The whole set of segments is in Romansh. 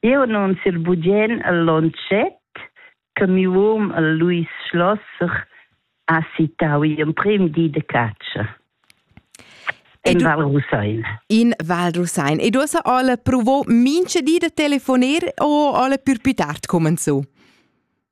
Jeu annunziel bugen al Lonchet che miu um el Luis Schlosser ha sittau igl emprem di de catscha. In du... Val Rusein. In Val Rusein. E du hast alle provo minche di de telefoner o alle pür più tard kommen zu?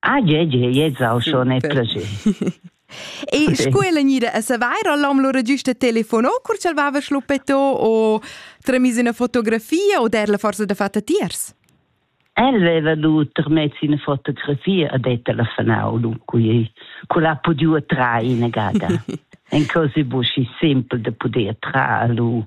Ah, je, je, je, zau schon e placer. E sco ella gnida a savair, l'hom lura giusta telefono, cur ch'el vava schluppetto o tremis una fotografia o der la forza da fatta tiers? El veva du trmez una fotografia a det telefonau, dunque cu l'ha podiu attrae in gada. En cose busci simpel de poder tra lu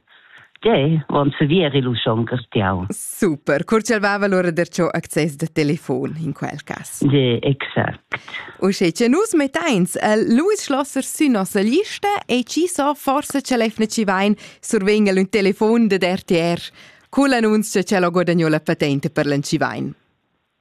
Tgei von sevir il uschon castiau. Super, cur ch'el vava lura derciò access da telefon in quel cas. De, exact. Uschè che nus metteins el Louis Schlosser sü nossa lista e chi so forse ce lefne ci vain survegn el ün telefon dad RTR cul annunzio che l'ho guadagno la patente per l'Ancivain.